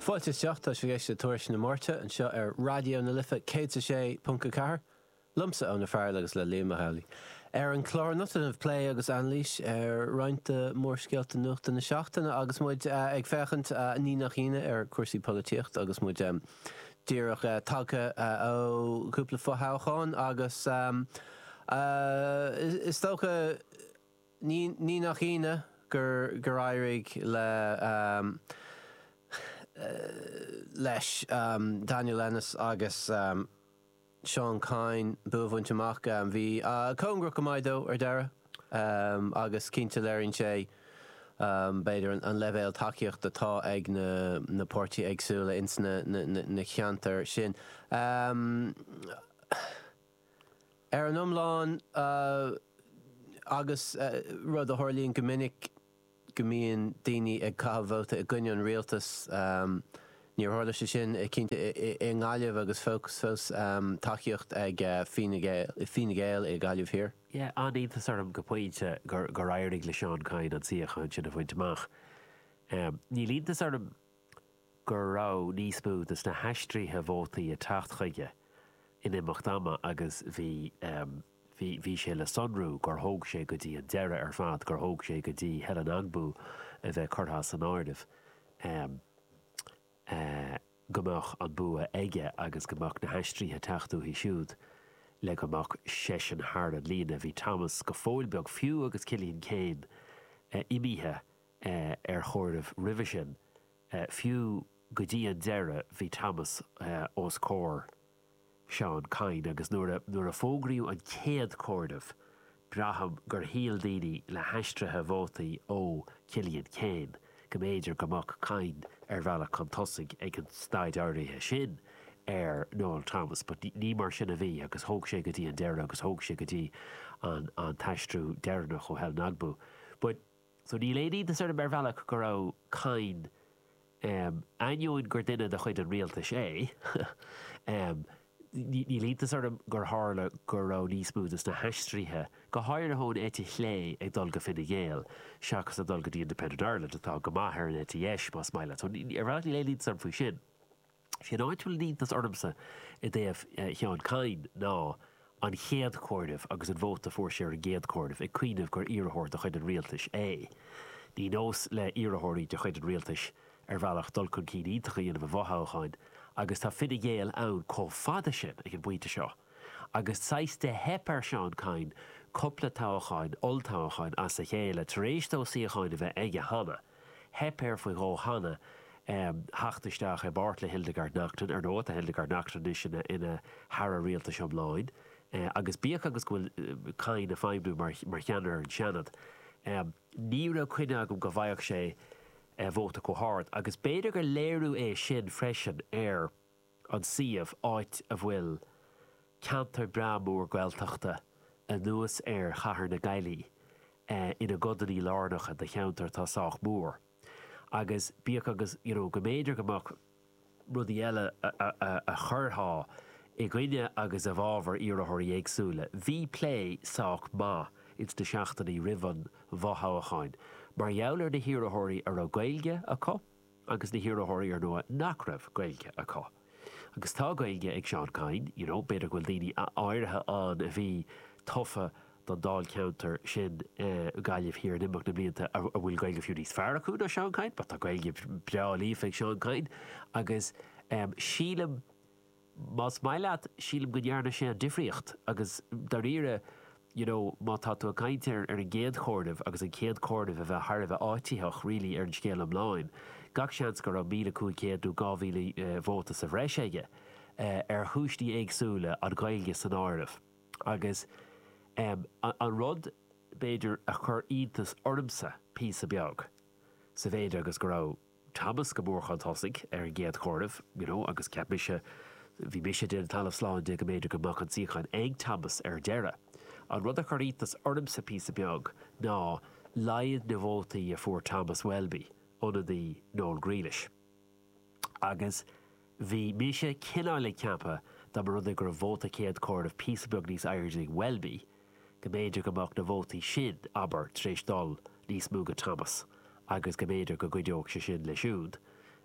Fáilte isteach, tá sibh ag éisteacht le Tuairisc na Máirte anseo ar Raidió na Life céad is a sé ponc a ceathair, liomsa, Eoin Ó Fearghail agus le Liam Ó hEalaí. Ar an chlár anocht déanfar plé agus anailís ar roinnt de mhórscéalta nuachta na seachtaine agus muid ag féachaint, ní nach ionadh, ar chúrsaí polaitíochta agus muid díreach tagtha ó chúpla fothoghchán agus is dócha, Ní nach ionadh gur éirigh le, leis, Daniel Ennis agus Seán Kyne bua a bhaint amach. Bhí cóngarach go maith dó ar deireadh agus cinnte léiríonn sé, b'fhéidir, an leibhéal tacaíochta atá ag na páirtithe éagsúla ins na ceantair sin. Ar an iomlán, agus rud a tharlaíonn go minic go mbíonn daoine ag caitheamh vóta i gcoinne an rialtais, níor tharla sé sin cinnte i nGaillimh agus fós fós tacaíocht ag Fine Gael i Gaillimh Thiar. Yeah, an-iontas orm go pointe gur éirigh le Seán Kyne an suíochán sin a bhaint amach. Níl iontas orm go raibh níos mó de na haistrithe vótaí ag teacht chuige in imeacht ama agus bhí, bhí, bhí sé le sonrú gur thóg sé go dtí an deireadh ar fad, gur thóg sé go dtí Helen Ogbu a bheith curtha as an áireamh, go mbeadh an bua aige agus go mbeadh na haistrithe ag teacht uaithi siúd le go mbeadh seisean thar an líne. Bhí Thomas go fóill beag, fiú agus Cillian Keane imithe ar chomhaireamh roimhe sin. Fiú go dtí an deireadh bhí Thomas os comhair Seán Kyne agus nuair a fógraíodh an chéad chomhaireamh braithim gur shíl daoine le haistrithe vótaí ó Cillian Keane go mb'fhéidir go mbeadh Kyne ar bhealach chun tosaigh ag an staid áirithe sin ar Noel Thomas but ní mar sin a bhí agus thóg sé go dtí an deireadh agus thóg sé go dtí an t-aistriú deireanach ó Helen Ogbu but So níl aon iontas orm ar bhealach go raibh Kyne, ainneoin gur duine de chuid an rialtais é, níl iontas orm gur tharla go raibh níos mó de na haistrithe, go háirithe ón eite chlé, ag dul go Fine Gael seachas ag dul go dtí Independent Ireland, atá go maith ar an eite dheis, más maith leat. So ar bhealach níl aon iontas orm faoi sin. Is é an áit a bhfuil an iontas ormsa i dtaobh Sheáin Kyne ná an chéad chomhaireamh agus an vóta fuair sé ar an gcéad chomhaireamh ag cuimhneamh gur iarrthóir de chuid an rialtais é. Ní nós le hiarrthóirí de chuid an rialtais ar bhealach dul chun cinn iontach a dhéanamh i bhfothoghcháin agus tá Fine Gael ann chomh fada sin ag an bpointe seo agus saghas do theip ar Sheán Kyne cupla toghcháin, olltoghcháin, as a chéile tar éis dó suíocháin a bheith aige cheana. Theip air faoi dhó cheana theacht isteach i bpáirt le Hildegarde Naughton, ar ndóigh, tá Hildegarde Naughton anois ina hAire Rialtais iomlán, agus bíodh agus go bhfuil Kyne ag feidhmniú mar cheannaire ar an Seanad, ní raibh coinne agam go bhfaigheadh sé vóta chomh hard, agus b'fhéidir gur léiriú é sin freisin ar. an suíomh, áit a bhfuil ceantar breá mór Gaeltachta, anuas ar chathair na Gaillimhe, ina gcodannaí lárnacha de cheantar atá sách mór. Agus bíodh agus, you know, go mb'fhéidir go mbeadh rudaí eile a chuirfeadh i gcoinne agus i bhfabhar iarrthóirí éagsúla, bhí plé sách maith ins na seachtainí roimh an bhfothoghchán mar gheall ar na hiarrthóirí a raibh Gaeilge acu, agus na hiarrthóirí úrnua nach raibh Gaeilge acu. Agus tá Gaeilge ag Seán Kyne, you know, b'fhéidir go bhfuil daoine áirithe ann a bhí tofa don dáilcheantar sin, Gaillimh Thiar in imeacht na mblianta a bhfuil Gaeilge fiú níos fearr acu ná Seán Kyne, but tá Gaeilge breá líofa ag Seán Kyne agus sílim, Más maith leat, sílim go ndearna sé an difríocht agus dáiríre you know má tá tú ag caint ar an gcéad chomhaireamh agus an chéad comhaireamh a bheith thar a bheith áititheach really ar an scéal iomlán, gach seans go raibh míle cúig chéad nó dhá mhíle vóta sa bhreis aige ar chúiseanna éagsúla, an Ghaeilge san áireamh. Agus em an rud b'fhéidir a chuir iontas ormsa píosa beag, sa mhéid agus go raibh, Thomas go mór chun tosaigh ar an gcéad chomhaireamh, you know, agus cheap mise, bhí mise ag déanamh talamh slán de go mb'fhéidir go mbeadh an suíochán ag Thomas ar deireadh. An rud a chuir iontas ormsa píosa beag ná laghad na vótaí a fuair Thomas Welby, ionadaí Noel Grealish. Agus. Bhí mise cineáil ag ceapadh, dá mba rud é go raibh vóta chéad chomhairimh píosa beag níos airde ag Welby, go mb'fhéidir go mbeadh na vótaí sin, abair, tar éis dul níos mó go Thomas agus go mb'fhéidir go gcuideodh sé sin leis siúd.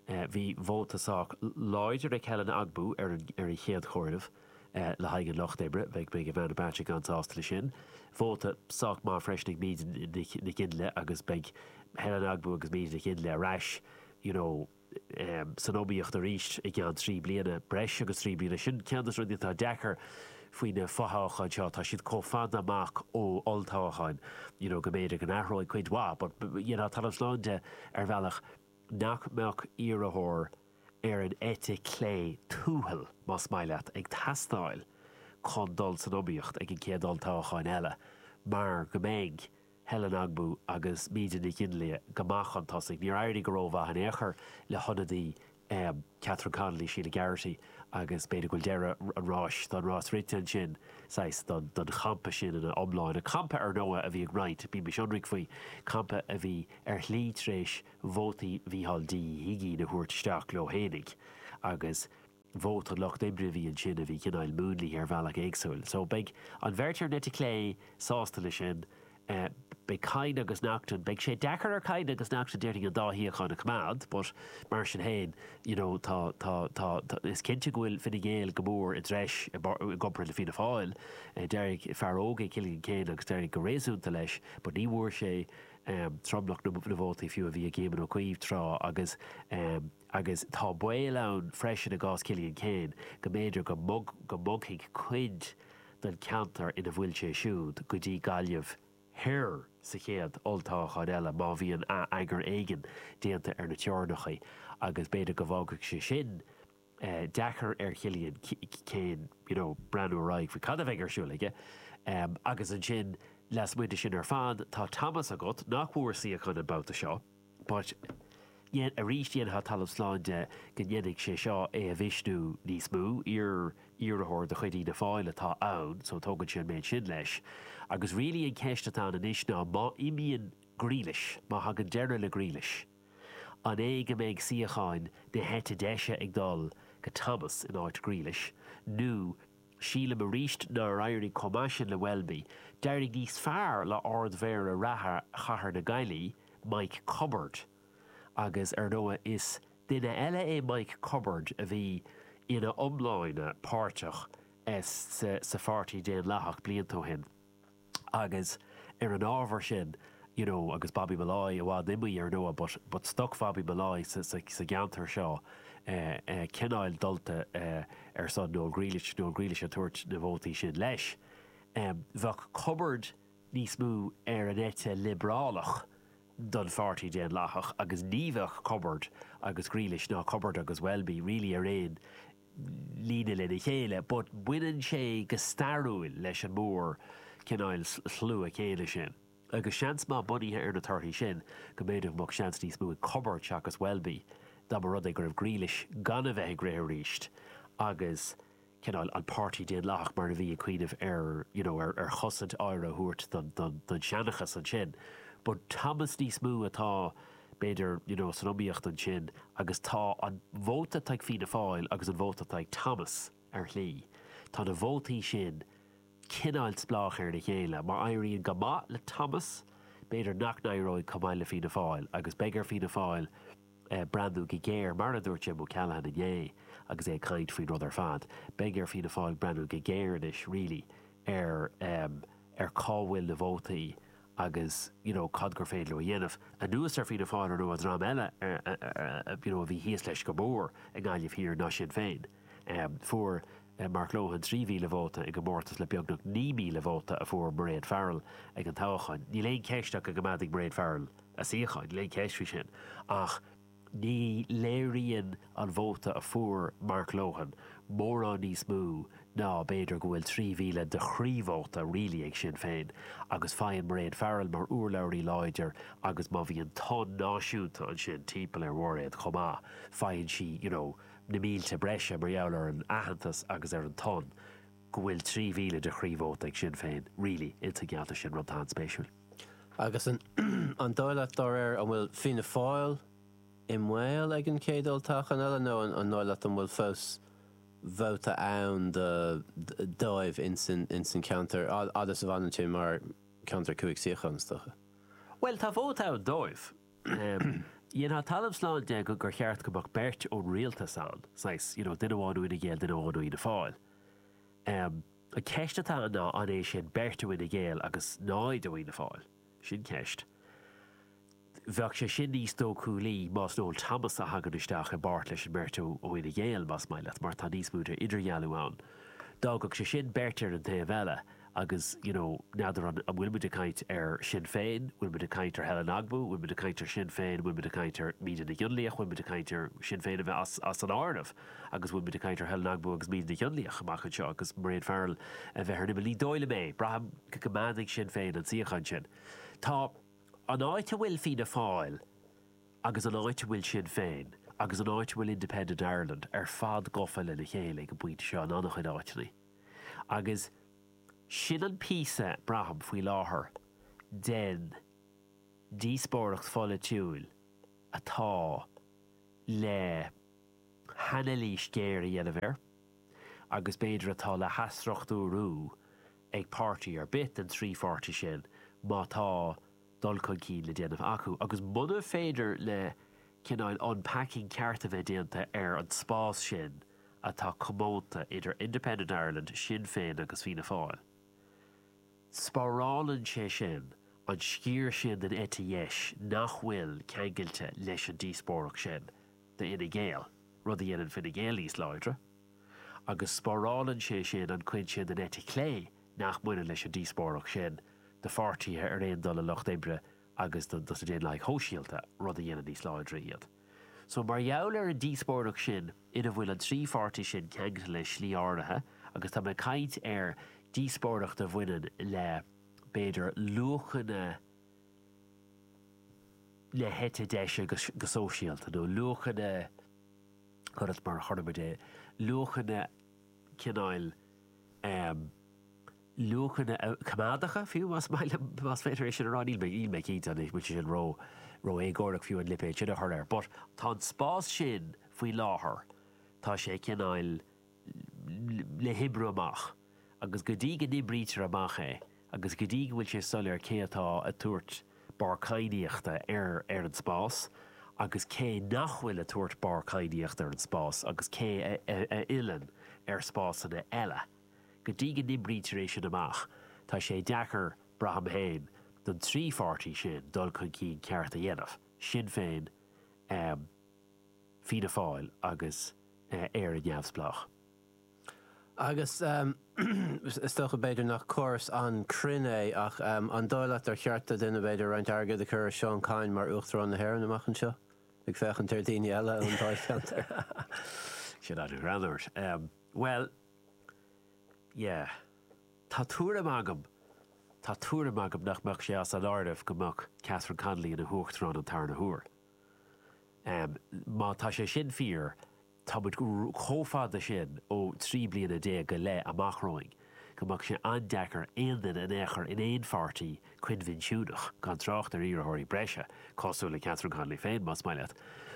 Bhí vóta sách láidir ag Helen Ogbu ar an chéad chomhaireamh le haghaidh an Lucht Oibre, beidh Ivana Bacik an-sásta leis sin. Vóta sách maith freisin ag Míde Nic Fhionnlaoich agus beidh Helen Ogbu agus Míde Nic Fhionnlaoich ar ais, you know, san iomaíocht arís i gceann trí bliana, breis agus trí bliana. Sin ceann de na rudaí atá deacair faoi na fo-thoghcháin seo, tá siad chomh fada amach ó olltoghcháin you know go mb'fhéidir go n-athróidh cuid mhaith but déanann sé talamh slán de ar bhealach nach mbeadh iarrthóir ar an eite chlé tuathail, más maith leat, ag teastáil chun dul san iomaíocht ag an gcéad olltoghchán eile mar go mbeidh. Helen Ogbu agus Míde Nic Fhionnlaoich go maith chun tosaigh. Níor éirigh go rómhaith in aon chor le hionadaí Catherine Connolly, Sheila Garrity, agus b'fhéidir go bhfuil deireadh an ráis don rás rite ansin, saghas, don champa sin ina iomláine. Campa, ar ndóigh, a bhí ag roinnt, bímis ionraic faoi, campa a bhí ar shlí tar éis vótaí Mhícheál D Ó hUigínn a thabhairt isteach leo fhéinig agus, vóta lucht oibre a bhí ansin a bhí cineáil múnlaithe ar bhealach éagsúil. So beidh an bheirt ar an eite chlé sásta leis sin. Beidh Kyne agus Naughten, beidh sé deacair ar Kyne agus Naughten déarfainn an dá shuíochán a choimeád but mar sin féin you know tá, tá, tá, tá, is cinnte go bhfuil Fine Gael go mór i dtreis i gcomparáid le Fianna Fáil. D'éirigh fear óg é Cillian Keane agus d'éirigh go réasúnta leis but ní bhfuair sé tromlach na vótaí fiú a bhí ag Éamon Ó Cuív tráth agus, agus tá baol ann freisin i gcás Chillian Keane go mb'fhéidir go mbogfaidh cuid den cheantar ina bhfuil sé siúd go dtí Gaillimh Thoir sa chéad olltoghchán eile má bhíonn atheagar éigin déanta ar na teorainneacha agus b'fhéidir go bhfágfadh sé sin deacair ar Chillian Keane you know breathnú ar aghaidh faoi cad a bheidh ar siúl aige agus ansin lasmuigh de sin ar fad tá Thomas agat nach bhfuair suíochán an babhta seo. but yet arís dhéanfá talamh slán de go ndéanfaidh sé seo é a mhisniú níos mó, iar-iarrthóir de chuid Fhianna Fáil atá ann so tógann sé an méid sin leis agus really an cheist atá ann anois ná má imíonn Grealish, má thagann deireadh le Grealish, an é go mbeidh suíocháin na heite deise ag dul go Thomas in áit Grealish nó. Sílim arís nár éirigh chomh maith sin le Welby. D'éirigh níos fearr le Ard-Mhéara reatha Chathair na Gaillimhe, Mike Cubbard. Agus ar ndóigh is duine eile é Mike Cubbard a bhí ina iomláine páirteach sa Pháirtí Daonlathach blianta ó shin. agus ar an ábhar sin you know agus Bobby Molloy i bhfad imithe ar ndóigh but but stoc Bhobby Molloy sa sa gceantar seo eh eh cineáil dulta eh ar son Noel Grealish Noel Grealish ag tabhairt na vótaí sin leis em bheadh Cubbard níos mó ar an eite liobrálach don Pháirtí Daonlathach agus ní bheadh Cubbard agus Grealish ná Cubbard agus Welby really ar aon líne lena chéile, but baineann sé go stairiúil leis an mór cineáil slua céanna sin, agus seans maith, bunaithe ar na torthaí sin, go mb'fhéidir go mbeadh seans níos mó ag Cubbard seachas Welby dá mba rud é go raibh Grealish gan a bheith ag rith arís agus cineáil an Páirtí Daonlathach mar a bhí ag cuimhneamh ar you know ar ar chosaint aire a thabhairt don don don seanchas ansin, but Thomas níos mó atá. b'fhéidir, you know, san iomaíocht ansin agus tá an vóta atá ag Fianna Fáil agus an vóta atá ag Thomas, ar shlí, tá na vótaí sin cineáil spleách ar a chéile. Má éiríonn go maith le Thomas, b'fhéidir nach n-éireoidh chomh maith le Fianna Fáil agus beidh ar Fianna Fáil breathnú go géar, mar a dúirt Jim O'Callaghan inné agus é ag caint faoin rud ar fad, beidh ar Fianna Fáil breathnú go géar anois really ar, eh, ar cá bhfuil na vótaí agus you know cad gur féidir leo a dhéanamh, anuas ar Fianna Fáil, an dream eile you know a bhí thíos leis go mór i nGaillimh Thiar ná Sinn Féin? em fuair Mark Lohan 3,000 vóta i gcomórtas le beagnach 9,000 vóta a fuair Mairéad Farrell ag an toghchán. Níl aon cheist ach go gcoimeádfaidh Mairéad Farrell a suíochán, níl aon cheist faoi sin ach, Ní léiríonn an vóta a fuair Mark Lohan mórán níos mó ná b'fhéidir go bhfuil 3,000 de chroí-vóta really ag Sinn Féin agus faigheann Mairéad Farrell mar urlabhraí láidir agus má bhíonn tonn náisiúnta ansin timpeall ar Mhairéad chomh maith, faigheann sí you know na mílte breise mar gheall ar an aitheantas agus ar an tonn ach go bhfuil 3,000 de chroí-vóta ag Sinn Féin really insa gceantar sin, rud anspéisiúil. Agus an dóigh leat, dá réir, an bhfuil Fianna Fáil i mbaol ag an chéad olltoghchán eile nó an dóigh leat an bhfuil fós vóta ann dóibh ins an cheantar fhad is a fhanann sé mar cheantar cúig suíochán, is dócha? Bhuel, tá vóta ann dóibh. Dhéanfá talamh slán de gur cheart go mbeadh beirt ón rialtas ann, saghas, you know, duine amháin ó Fhine Gael, duine amháin ó Fhianna Fáil. An cheist atá ann ná an é sin beirt Fhine Gael agus 0 ó Fhianna Fáil? Sin ceist. Bheadh sé sin níos dóchúlaí más Noel Thomas a thagann isteach i bpáirt leis an mbeirt ó Fhine Gael, más maith leat, mar tá níos mó d'idirdhealú ann. D'fhágfadh sé sin beirt ar an taobh eile agus you know n'fheadar an bhfuil muid ag caint ar Shinn Féin, bhfuil muid ag caint ar Helen Ogbu, bhfuil muid ag caint ar Shinn Féin, bhfuil muid ag caint ar Míde Nic Fhionnlaoich, bhfuil muid ag caint ar Shinn Féin a bheith as an áireamh? agus bhfuil muid ag caint ar Helen Ogbu agus Míde Nic Fhionnlaoich amach anseo agus Mairéad Farrell a bheith ar an imeall. Ní dóigh liom é. Braithim go gcoimeádfaidh Sinn Féin an suíochán sin. Tá an áit a bhfuil Fianna Fáil agus an áit a bhfuil Sinn Féin agus an áit a bhfuil Independent Ireland ar fad gofa lena chéile ag an bpointe seo in an-chuid áiteanna agus sin an píosa, braithim, faoi láthair, den díospóireacht pholaitiúil atá le. hanailís ghéar a dhéanamh air agus b'fhéidir atá le hathstruchtúrú ag páirtí ar bith den trí pháirtí sin má tá dul chun cinn le déanamh acu agus muna féidir le cineál unpacking ceart a bheith déanta ar an spás sin atá comónta idir Independent Ireland, Sinn Féin agus Fianna Fáil. Spárálann sé sin an sciar sin den eite dheis nach bhfuil ceangailte leis an díospóireacht sin. d'Fhine Gael, rud a dhéanann Fine Gael níos láidre, agus spárálann sé sin an chuid sin den eite chlé nach mbaineann leis an díospóireacht sin do pháirtithe ar aon dul leis an Lucht Oibre agus do na Daonlathaigh Shóisialta, rud a dhéanann níos láidre iad. So, mar gheall ar an díospóireacht sin ina bhfuil an trí pháirtí sin ceangailte le sliabh áirithe, agus tá mé ag caint ar díospóireacht a bhaineann le, b'fhéidir, luachanna, na heite deise go sóisialta, nó luachanna, cuir i gcás mar a chuir muid é, luachanna cineáil, luachanna coimeádacha, fiú, más maith liom, más féidir é sin a rá, níl mé, níl mé cinnte anois, bhfuil sé sin ró, ró-éagórach, fiú, an lipéad sin a chur air, but tá an spás sin faoi láthair, tá sé cineál, le hoibriú amach, agus go dtí go n-oibrítear amach é agus go dtí go bhfuil sé soiléir cé atá ag tabhairt barr cadhnaíochta ar an spás agus cé nach bhfuil ag tabhairt barr cadhnaíochta ar an spás agus cé a fhilleann ar spásanna eile, go dtí go n-oibrítear é sin amach, tá sé deacair, braithim féin, don trí pháirtí sin dul chun cinn ceart a dhéanamh, Sinn Féin, Fianna Fáil agus Éire Neamhspleách. Agus is dócha, b'fhéidir, nach córas an-chruinn é, ach an dóigh leat ar cheart do dhuine, b'fhéidir, roinnt airgid a chur ar Seán Kyne mar Uachtarán na hÉireann amach anseo, ag féachaint ar dhaoine eile ón dáilcheantar? Sin ar an aird. Bhuel, yeah. Tá tuairim agam, tá tuairim agam nach mbeadh sé as an áireamh go mbeadh Catherine Connolly ina hUachtarán an tarna huair. Má tá sé sin fíor, táimid chomh fada sin ó trí bliana déag go leith amach romhainn go mbeadh sé an-deacair aon duine in aon chor in aon pháirtí coinbhinsiúnach, gan trácht ar iarrthóirí breise cosúil le Catherine Connolly féin, más maith leat,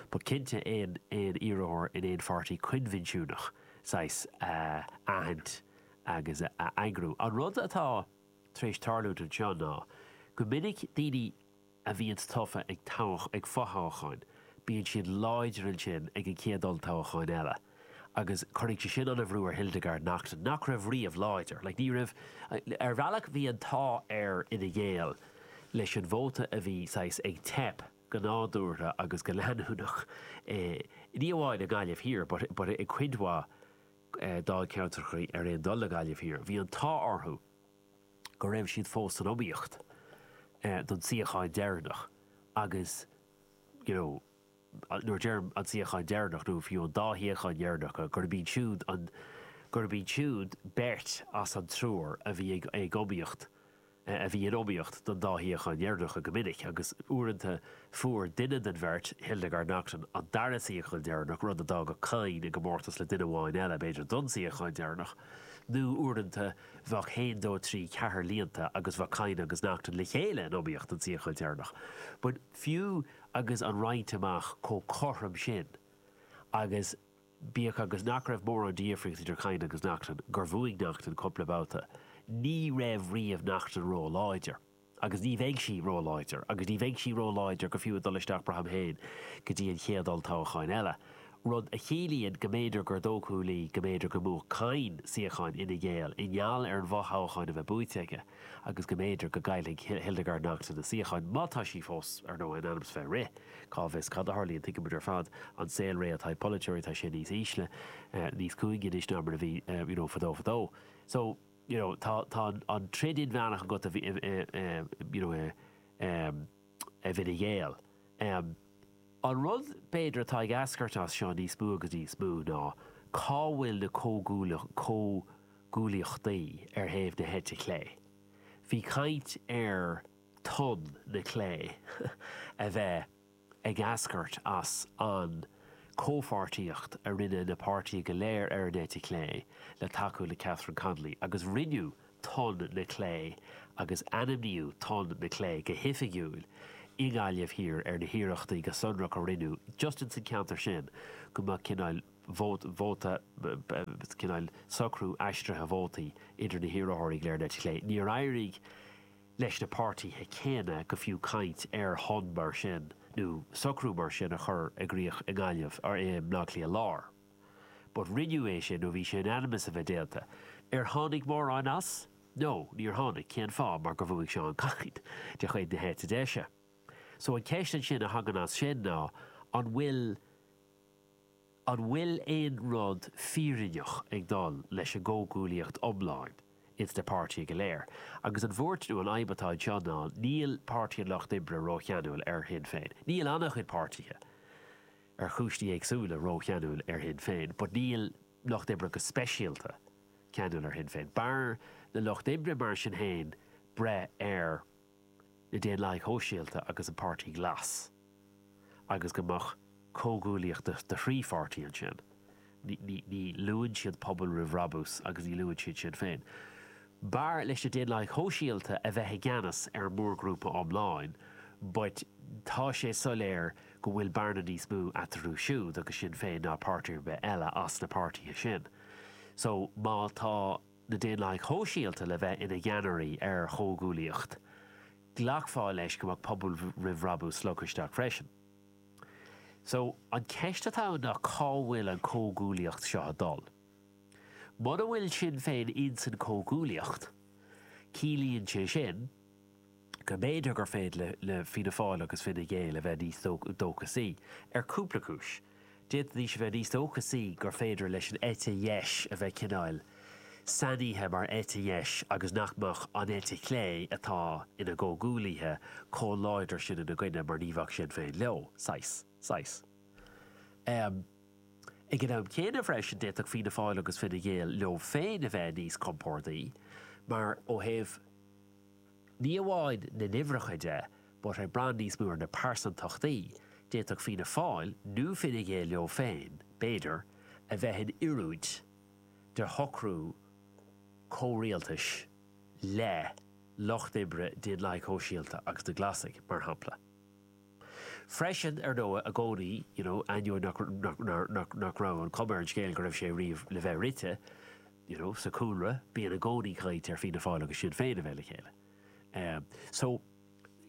but cinnte aon aon iarrthóir in aon pháirtí coinbhinsiúnach, saghas, a aithint agus a eagrú. An rud atá tar éis tarlúint anseo ná go minic daoine a bhíonns tofa ag fothoghcháin, bíonn siad láidir ansin ag an chéad olltoghchán eile. Agus cuirfidh sé sin ana bhrú ar Hildegarde Naughton, nach raibh riamh láidir. Like, ní raibh, ar bhealach bhí an t-ádh ar Fhine Gael leis an vóta a bhí saghas ag teip go nádúrtha agus go leanúnach i, ní amháin i nGaillimh Thiar but, but i gcuid mhaith dáilcheantrachaí ar aon dul le Gaillimh Thiar. Bhí an t-ádh orthu. go raibh siad fós san iomaíocht don tsuíochán deireanach agus you know nuair a deirim an suíochán deireanach nó fiú an dá shuíochán dheireanacha gurb iad siúd an, gurb iad siúd beirt as an triúr a bhí ag iomaíocht, a bhí in iomaíocht don dá shuíochán dheireanacha go minic agus uaireanta fuair duine den bheirt, Hildegarde Naughton, an dara suíochán deireanach, rud a d'fhágadh Kyne i gcomórtas le duine amháin eile b'fhéidir don suíochán deireanach nó uaireanta, Bheadh haon, dó, trí, ceathair líonta agus bheadh Kyne agus Naughton le chéile in iomaíocht don suíochán deireanach. But fiú agus an roinnt amach chomh cothrom sin, agus bíodh agus nach raibh mórán difríocht idir Kyne agus Naughton, gur bhuaigh Naughton cúpla babhta, ní raibh riamh Naughton róláidir. Agus ní bheidh sí ró-láidir. Agus ní bheidh sí ró-láidir go fiú ag dul isteach braithim féin go dtí an chéad olltoghchán eile. Rud a chiallaíonn go mb'fhéidir gur dóchúla go mb'fhéidir go mbuafadh Kyne suíochán Fhine Gael i ngeall ar an bhfothoghchán a bheith buaite aige agus go mb'fhéidir go gcaillfidh Hildegarde Naughton a suíochán, má tá sí fós, ar ndóigh, in ainm is bheith ag rith. Cá bhfios cad a tharlaíonn. Tuigeann muid ar fad an saol réidh atá ag polaiteoirí, tá sé níos ísle, níos cúinge anois ná mar a bhí, you know, fadó fadó. So. you know tá tá an an troid inmheánach agat a bhí i i you know i um i bhFine Gael um an rud b'fhéidir atá ag eascairt as seo níos mó agus níos mó ná cá bhfuil na comhghuaillíocht comhghuaillíochtaí ar thaobh na heite clé bhí caint ar tonn na clé a bheith Ag eascairt as an comhpháirtíocht a rinne na páirtithe go léir ar an eite chlé le tacú le Catherine Connolly agus rinneadh Tonn na Clé agus ainmníodh Tonn na Clé go hoifigiúil i nGaillimh Thiar ar na hiarrachtaí go sonrach a rinneadh just insan cheantar sin go mbeadh cineál vóta, cineál socrú aistrithe vótaí idir na hiarrthóirí go léir ar an eite chlé. Níor éirigh. leis na páirtithe céanna go fiú caint ar thonn mar sin nó socrú mar sin a chur i gcrích i nGaillimh or i mBleá Cliath Láir. But rinneadh é sin nó bhí sé in ainm is a bheith déanta. Ar tháinig mórán as? No, níor tháinig. Cén fáth? Mar gur bhuaigh Seán Kyne, de chuid na heite deise. So an ceist ansin a thagann as sin ná, an bhfuil, An bhfuil aon rud fírinneach ag gabháil leis an gcomhghuaillíocht iomlán ins na páirtithe go léir? Agus an bhuairt nó an fhadhb atá anseo ná, níl Páirtí an Lucht Oibre rócheanúil ar Shinn Féin. Níl an-chuid páirtithe, ar chúinsí éagsúla, rócheanúil ar Shinn Féin, but níl Lucht Oibre go speisialta ceanúil ar Shinn Féin. B'fhearr le Lucht Oibre, mar sin féin, breith ar. na Daonlathaigh Shóisialta agus an Páirtí Glas, agus go mbeadh comhghuaillíocht de thrí pháirtí ansin. Ní luann siad Pobal Roimh Bhrabús agus ní luann siad Sinn Féin. B'fhearr leis na Daonlathaigh Shóisialta a bheith i gceannas ar an mórghrúpa iomlán but tá sé soiléir go bhfuil bearna níos mó eatarthu siúd agus Sinn Féin ná páirtí ar bith eile as na páirtithe sin. So má tá. na Daonlathaigh Shóisialta le bheith ina gceannairí ar chomhghuaillíocht, ghlacfá leis go mbeadh Pobal Roimh Bhrabús slogtha isteach freisin. So, an cheist atá ann ná cá bhfuil an comhghuaillíocht seo ag dul? Muna bhfuil Sinn Féin insan comhghuaillíocht, ciallaíonn sé sin, go mb'fhéidir gur féidir le Fianna Fáil agus Fine Gael a bheith níos dóchasaí, ar cúpla cúis. D'fhéadfaidís a bheith níos dóchasaí gur féidir leis an eite dheis a bheith cineál sainithe mar eite dheis agus nach mbeadh an eite chlé, atá ina gcomhghuaillithe, chomh láidir sin ina gcoinne mar ní bheadh Sinn Féin leo, saghas, saghas. Ag an am céanna freisin, d'fhéadfadh Fianna Fáil agus Fine Gael leo féin a bheith níos compordaí mar, ó thaobh, Ní amháin na n-uimhreacha de, but ag baint níos mó ar na pearsantachtaí, d'fhéadfadh Fianna Fáil, nó Fine Gael leo féin, b'fhéidir, a bheith in oiriúint de shocrú comhrialtais le Lucht Oibre, Daonlathaigh Shóisialta agus na Glasaigh, mar shampla. Freisin, ar ndóigh, i gcónaí, you know, ainneoin nach raibh an chuma ar an scéal go raibh sé riamh le bheith rite, you know, sa chúlra, bíonn i gcónaí caint ar Fianna Fáil agus Sinn Féin a bheith le chéile. Eh. So,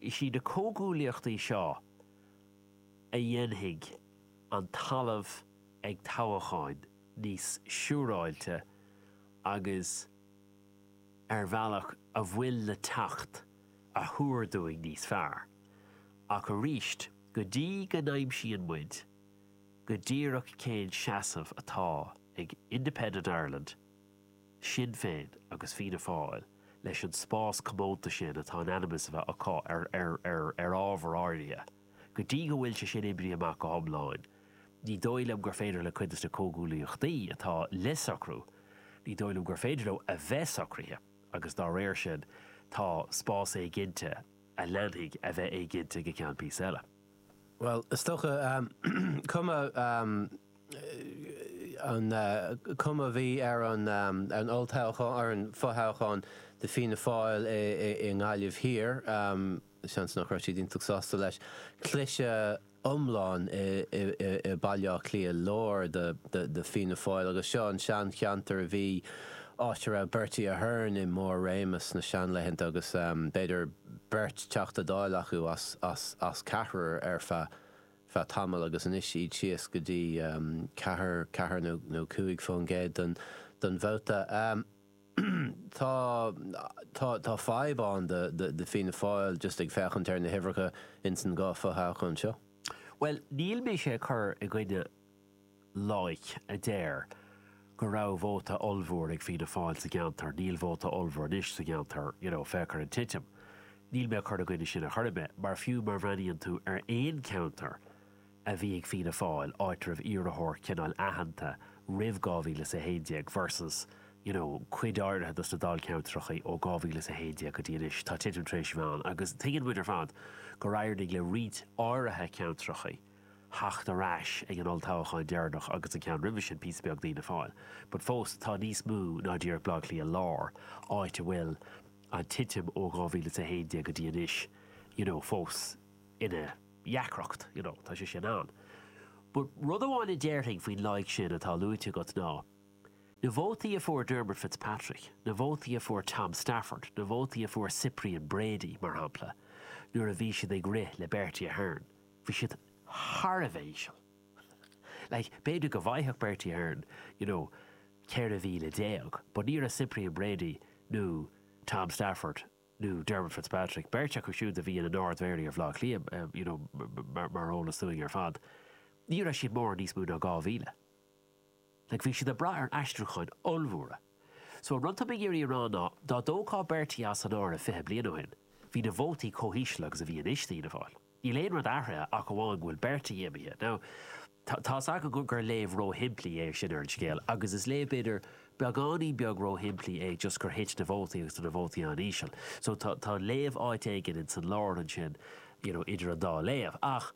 is iad na comhghuaillíochtaí seo a dhéanfaidh an talamh ag toghacháin níos siúráilte agus ar bhealach a bhfuil le teacht a thuar dúinn níos fearr. Ach arís, go dtí go n-aimsíonn muid, go díreach cén seasamh atá ag Independent Ireland, Sinn Féin agus Fianna Fáil leis an spás comónta sin atá in ainm is a bheith acu ar ábhair áirithe. Go dtí go bhfuil sé sin oibrithe amach go hiomláin, ní dóigh liom gur féidir le cuid de na comhghuaillíochtaí atá le socrú, ní dóigh liom gur féidir leo a bheith socraithe agus dá réir sin tá spás éiginnte a leanfaidh a bheith éiginnte go ceann píosa eile. Bhuel, is dócha, cuma cén chuma a bhí ar an olltoghchán, ar an fothoghchán do Fianna Fáil i nGaillimh Thiar, seans nach raibh siad iontach sásta leis. Cliseadh iomlán i Baile Átha Cliath Láir do Fianna Fáil agus seo an seancheantar a bhí, áit a raibh Bertie Ahern i mbarr réime sna seanlaethanta agus b'fhéidir, beirt Teachta Dáil acu as ceathrar ar feadh tamaill agus anois iad síos go dtí ceathair nó cúig fán gcéad den vóta. Tá fadhb ann do Fianna Fáil just ag féachaint ar na huimhreacha ins an dá fho-thoghchán seo. Bhuel, níl mise ag cur i gcoinne loighic a deir go raibh vóta ollmhór ag Fianna Fáil sa gceantar, níl vóta ollmhór anois sa gceantar, you know, féach ar an titim. Níl mé ag cur i gcoinne sin ar chor ar bith, mar fiú má bhreathnaíonn tú ar aon cheantar a bhí ag Fianna Fáil, áit a raibh iarrthóir cineáil aitheanta roimh 2011 versus, you know, cuid áirithe dos na dáilcheantrachaí ó 2011 go dtí anois, tá titim tar éis a bheith ann agus tuigeann muid ar fad gur éirigh le roinnt áirithe ceantrachaí. theacht ar ais ag an olltoghchán deireanach agus an ceann roimhe sin píosa beag d'Fhianna Fáil. But fós tá níos mó ná díreach Bleá Cliath lár, áit a bhfuil an titim ó 2011 go dtí anois you know fós ina dheacracht you know tá sé sin ann. But rud amháin a déarfainn faoin loighic sin atá luaite agat ná na vótaí a fuair Dermot Fitzpatrick, na vótaí a fuair Tom Stafford, na vótaí a fuair Cyprian Brady, mar shampla, nuair a bhí siad ag rith le Bertie Ahern, bhí siad thar a bheith íseal. Like, b'fhéidir go bhfaigheadh Bertie Ahern, you know, 14,000 but ní raibh Cyprian Brady nó Tom Stafford nó Dermot Fitzpatrick, beirt acu siúd a bhí ina nArd-Mhéaraí ar Bhaile Átha Cliath, em, you know, mar is eol dúinn ar fad, ní raibh siad mórán níos mó ná 2,000. Like, bhí siad ag brath ar aistriúcháin ollmhóra. So, an rud atá mé ag iarraidh a rá ná, dá dtógfá Bertie as an áireamh fiche bliain ó shin, bhí na vótaí chomh híseal agus a bhí anois d'Fhianna Fáil. Níl aon rud athraithe ach amháin go bhfuil Bertie imithe. Now, tá a fhios agam gur léamh róshimplí é sin ar an scéal agus is léamh, b'fhéidir, beagáinín beag róshimplí é just gur thit na vótaí agus tá na vótaí an-íseal. So, tá, tá an léamh áit éigin in san lár ansin, you know, idir an dá léamh. Ach,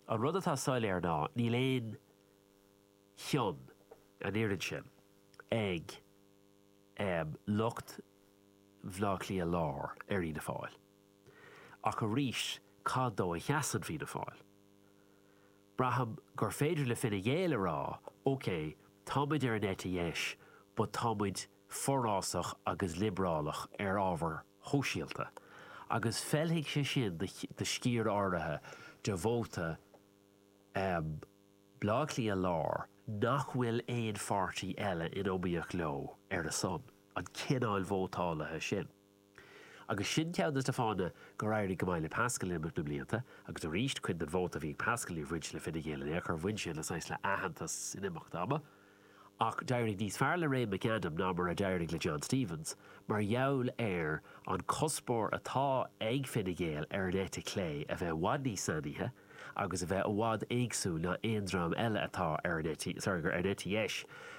an rud atá soiléir ná, níl aon, chionn, an oiread sin, ag lucht Bhleá Cliath Láir ar Fhianna Fáil. Ach arís, cad dó a seasann Fianna Fáil? Braithim gur féidir le Fine Gael a rá, OK, tá muid ar an eite dheis but tá muid forásach agus liobrálach ar ábhair shóisialta, agus feilfidh sé sin do sciar áirithe de vóta Bhleá Cliath Láir, nach bhfuil aon pháirtí eile in iomaíocht leo ar a son, an cineáil vótálaithe sin. Agus sin ceann de na fáthanna gur éirigh go maith le Paschal in imeacht na mblianta, agus arís, cuid den vóta a bhí ag Paschal ní bhain sé le Fine Gael in aon chor, bhain sé le saghas le aitheantas in imeacht ama, Ach d'éirigh níos fearr le Ray McAdam ná mar a d'éirigh le John Stephens mar gheall ar an cuspóir atá ag Fine Gael ar an eite chlé a bheith i bhfad níos sainithe agus a bheith i bhfad éagsúil ná aon dream eile atá, sorry, ar an eite dheis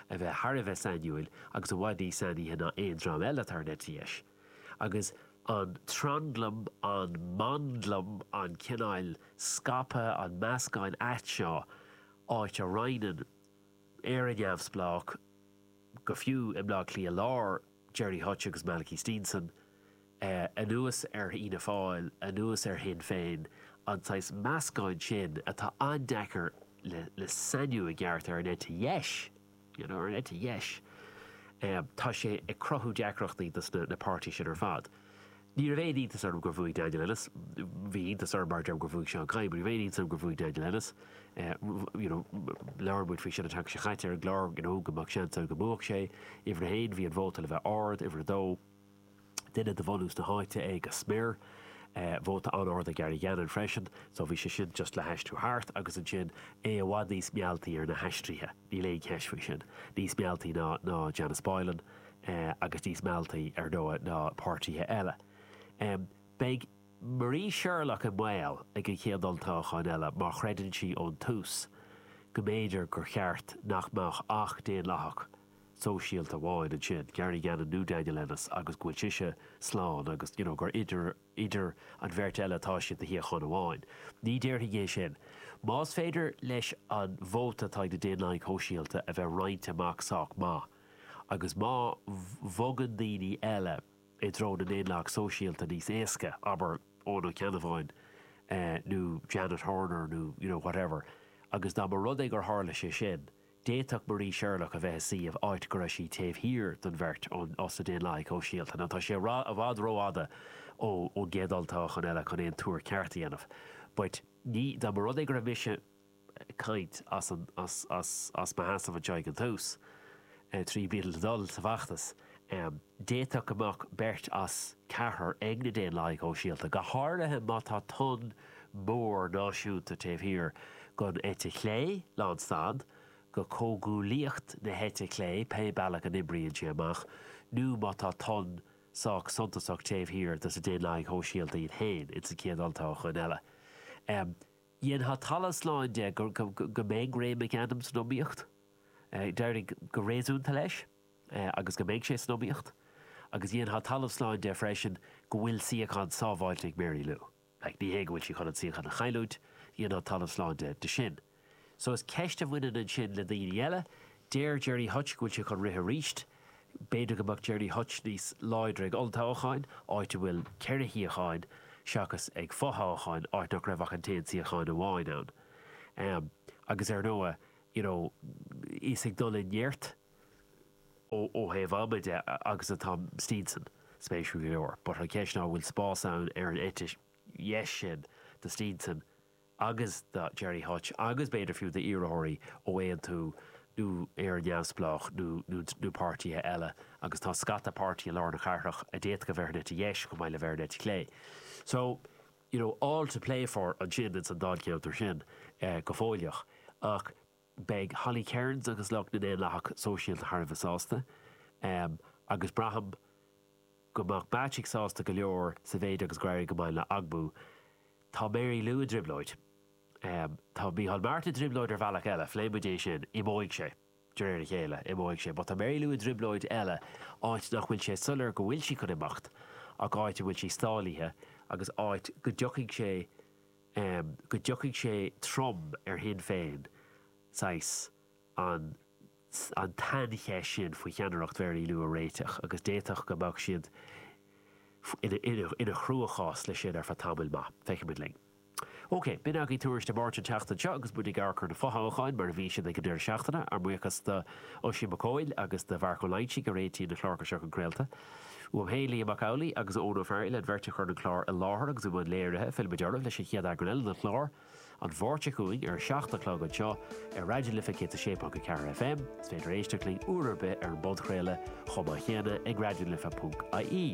a bheith thar a bheith sainiúil agus i bhfad níos sainithe ná aon dream eile atá ar an eite dheis. Agus an tranglam, an manglam, an cineál scaipeadh, an meascán ait seo, áit a roinneann, Éire neamhspleách, go fiú i mBleá Cliath Láir, Gerry Hutch agus Malachy Steenson, anuas ar Fhianna Fáil, anuas ar Shinn Féin, an saghas meascáin sin atá an-deacair le sainiú i gceart ar an eite dheis, you know, ar an eite dheis, tá sé ag cruthú deacrachtaí dos na páirtithe sin ar fad. Ní raibh aon iontas orm gur bhuaigh Daniel Ennis. Bhí iontas orm, mar a deirim, gur bhuaigh Seán Kyne. Ní raibh aon iontas orm gur bhuaigh Daniel Ennis. You know, labhair muid faoi sin an tseachtain seo chaite ar an gclár, you know, go mbeadh seans ann go mbuafadh sé. Uimhir a haon, bhí an vóta le bheith ard. Uimhir a dó, duine de bhunús na háite é go smior é. Vóta an-ard ag Gary Gannon freisin. So bhí sé sin just le haistriú thart agus ansin é i bhfad níos mealltaí ar na haistrithe. Níl aon cheist faoi sin. Níos mealltaí ná, ná Janice Boylan. agus níos mealltaí, ar ndóigh, ná na páirtithe eile. Beidh Marie Sherlock i mbaol ag an chéad olltoghchán eile mar chreideann sí ón tús go mb'fhéidir gur cheart nach mbeadh ach Daonlathach Sóisialta amháin ansin, Gary Gannon nó Daniel Ennis, agus go bhfuil sise slán agus you know gur idir an bheirt eile atá siad do shuíochán amháin. Ní déarfainn é sin. Más féidir leis an vóta atá ag na Daonlathaigh Shóisialta a bheith roinnte amach sách maith, agus má bhogann daoine eile i dtreo na nDaonlathach Sóisialta níos éasca, abair, Eoin Ó Ceannabháin nó Janet Horner nó, you know, whatever, agus dá mba rud é gur tharla sé sin, d'fhéadfadh Marie Sherlock a bheith i suíomh áit go raibh sí taobh thiar den bheirt ós na Daonlathaigh Shóisialta. Now tá sé i bhfad rófhada ón gcéad olltoghchán eile chun aon tuar ceart a dhéanamh. But ní, dá mba rud é go raibh mise caint as mo sheasamh anseo ag an tús, triail le dul sa bhfeachtas. D'fhéadfadh go mbeadh beirt as ceathrar ag na Daonlathaigh Shóisialta, go háirithe má tá tonn mór náisiúnta taobh thiar don eite chlé, lán stad go comhghuaillíocht na heite clé, pé bealach a n-oibríonn sé amach, nó má tá tonn sách suntasach taobh thiar dos na Daonlathaigh Shóisialta iad féin, ins an chéad olltoghchán eile. Dhéanfá talamh slán de go mbeidh Ray McAdam san iomaíocht. D'éirigh go réasúnta leis agus go mbeidh sé san iomaíocht agus dhéanfá talamh slán de freisin go bhfuil suíochán sábháilte ag Mary Lou. Like, ní hé go bhfuil sí chun an suíochán a chailliúint, dhéanfá talamh slán de sin. So is ceist a bhaineann ansin le daoine eile. Deir Gerry Hutch go bhfuil sé chun rith arís. B'fhéidir go mbeadh Gerry Hutch níos láidre ag olltoghchán, áit a bhfuil ceithre shuíochán, seachas ag fothoghchán, áit nach raibh ach an t-aon suíochán amháin ann. Agus ar ndóigh, you know, is ag dul i neart ó thaobh ama de agus atá Steenson, spéisiúil go leor. But an cheist ná an bhfuil spás ann ar an eite dheis sin do Steenson? agus do Gerry Hutch agus b'fhéidir fiú d'iarrthóirí ó Aontú nó Éire Neamhspleách nó páirtithe eile agus tá scata páirtí i lár na cathrach a d'fhéadfadh a bheith ar an eite dheis chomh maith le bheith ar an eite chlé. So, you know, all to play for ansin ins an Dáilcheantar sin go fóilleach ach, Beidh Holly Cairns agus lucht na nDaonlathach Sóisialta thar a bheith sásta, agus braithim go mbeadh Bacik sásta go leor sa mhéid agus gur éirigh go maith le Ogbu. Tá Mary Lou i dtrioblóid. Tá Micheál Martin i dtrioblóid ar bhealach eile, phléigh muid é sin, imeoidh sé de réir a chéile, imeoidh sé. But tá Mary Lou i dtrioblóid eile, áit nach bhfuil sé soiléir go bhfuil sí chun imeacht ach áit a bhfuil sí stálaithe agus áit go dtiocfaidh sé, em, go dtiocfaidh sé trom ar Shinn Féin, saghas, an, an tsaincheist sin faoi cheannaireacht Mhary Lou a réiteach agus d'fhéadfadh go mbeadh siad ina chruachás leis sin ar feadh tamaill mhaith. Feicfidh muid linn. OK, b'in againn Tuairisc Dé Máirt an tseachtain seo agus muid ag amharc ar na fothoghcháin mar a bhí siad ag an deireadh seachtaine. Ár mbuíochas d'Oisín Mac Cóil agus do Mharc Ó Loingsigh a réitigh na cláracha seo go craolta. Uaim féin, Liam Mac Amhlaigh agus Eoin Ó Fearghail an bheirt a chuir an clár i láthair agus i mbun léirithe, fillimid oraibh leis an chéad eagrán eile den chlár, an Mháirt seo chugainn, ar a seacht a chlog anseo ar Raidió na Life 106.4 FM. Is féidir éisteacht linn uair ar bith ar an bpodchraoladh chomh maith chéanna ag raidionalife.ie.